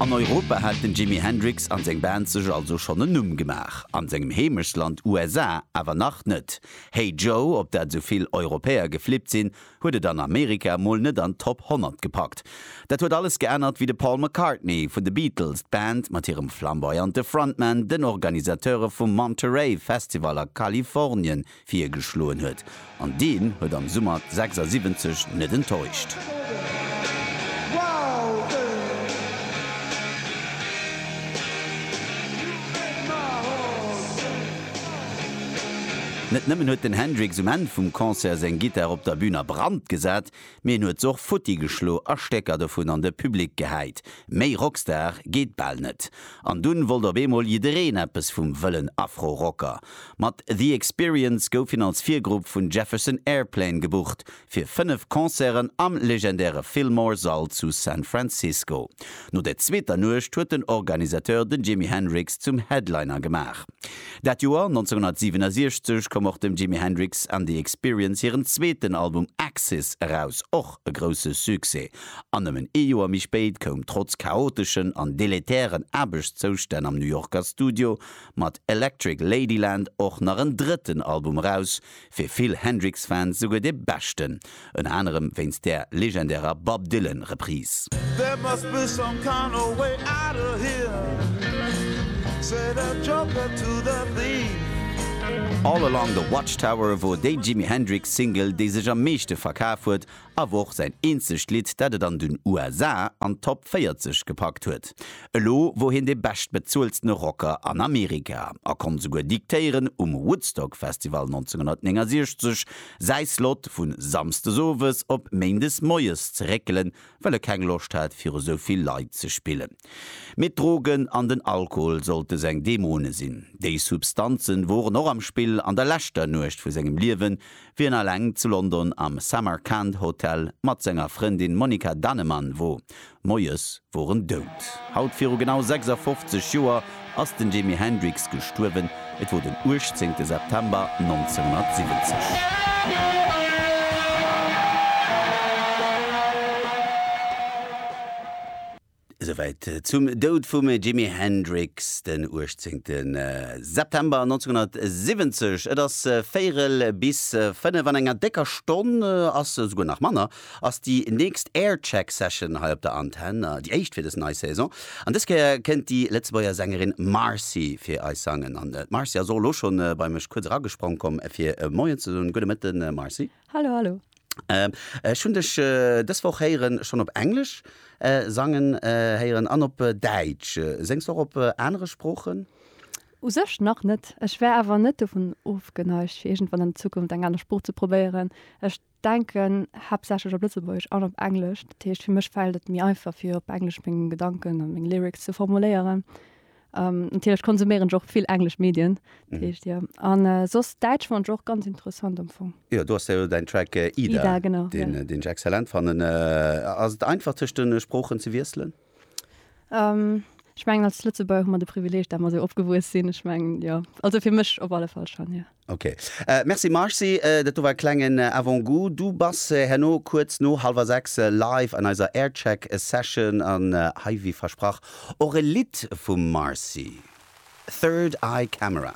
An Europa hat den Jimi Hendrix an seng Band sech also schonn en Numm gemaach, an sengem Heemechtsland USA awer nach net. Hey Joe, op dat esou vill Europäer geflippt sinn, huet et an Amerika mol net an d'Top 100 gepackt. Dat huet alles geännert, wéi de Paul McCartney vun de Beatles d'Band mat hirem flamboyante Frontman den Organisateure vum Monterey Festival a Kalifornien Virgeschloen huet, an deen huet am Summer 76 net enttäuscht. Net nëmmen huet den Hendrix um Enn vum Concert seng Gittar op der Bün a Brand gesat, Mee en huet se och futti geschlo a Stécker dovun an de Public gehäit. Méi Rockstar geet bal net. An dunn wollt op eemol jiddereen eppes vum wëllen Afro-Rocker. Mat The Experience gouf hien als Virgrupp vun Jefferson Airplane gebucht fir 5 Concerten am legendäre Fillmore Sall zu San Francisco. No der zweeter Nuecht huet den Organisateur den Jimi Hendrix zum Headliner gemaach. Dat Joer 1967 koum och dem Jimi Hendrix and the Experience hiren zweeten Album Axis eraus, och e grousse Succès. An nëmmen ee Joer méi spéit koum trotz chaoteschen an deletären Aarbechtszoustänn am New Yorker Studio mat Electric Ladyland och nach en drëtten Album eraus, Fir vill Hendrix-Fans souguer de beschten, ënner anerem wéinst där legendärer Bob Dylan Reprise. There must be some kind of way out of here, said the joker to the thief. All Along the Watchtower wor déi Jimi Hendrix Single, déi sech am meeschte verkaf huet Awer och säin eenzegt Lidd, dat et an den USA an d'Top 40 gepackt huet. Elo wor hien de beschtbezueltene Rocker an Amerika a konnt esouguer diktéieren, um Woodstock Festival 1969 säi Slot vu Samsdes Owes op Méindes Moies ze réckelen, well e keng Loscht hat, viru sou vill Leit ze spillen. Mee d'Drogen an den Alkohol sollte seng Dämone sinn. Déi Substanze woren och am Spill an der leschter Nuecht vu sengem Liewen, Wien alleng zu London am Samarkand Hotel mat senger Frëndin Monika Dannemann wor, moies wor en dout. Haut viru genau 56 Joer ass den Jimi Hendrix gestuerwen, et wor den 18 September 1970. Esouwäit zum Doud vum Jimi Hendrix den 18. September 1970. Et ass véierel bis fënnef. An enger décker Stonn, ass esouguer nach manner, ass déi nächst Aircheck Session hei op der Antenn, déi éischt fir dës nei Saison. An dës Kéier kënnt déi Lëtzebuerger Sängerin Marcy fir eis sangen. An d'Marcy ass och elo schonn bei mech kuerz eragesprong komm fir Moien ze soen. Gudde Mëtten Marcy. Hallo hallo. Ech hunn dech dës Woch héieren, schonn op Englesch sangen héieren an op Däitsch. Séngs de och op anere Sproochen? U sech nach net. Ech wär awer net dovun ofgeneigt, fir iergendwann an Zukunft eng aner Sprooch ze probéieren. Ech denken haaptsächlech op Lëtzebuergesch an op Englesch. Dat heescht, fir mech fält et méi einfach, fir op Englesch meng Gedanken a meng Lyrics ze formuléieren. Ähm, natierlech konsuméieren ech och vill englesch Medien, dat mhm. heescht, ja. An äh, soss Däitsch fand ech och ganz interessant am Fong. Ja, du hast ja dein Track äh, Ida, Ida genau, den, ja. Äh, den ich exzellent fanden. Äh, ass et einfach zwischen den äh, Sprochen ze wiesselen? Ähm, ich meng als Lëtzebuerg hu mer de Privileg, dat mer so opgewuess sinn. Ich meng ja, also fir mech op alle Fall schon, ja. Ok. Merci Marcy, dat do war e klengen Avant-goût. Du bass herno kuerz no hallwer 6 live an eiser Aircheck Session an hei wéi versprach och e Lidd vum Marcy, Third Eye Camera.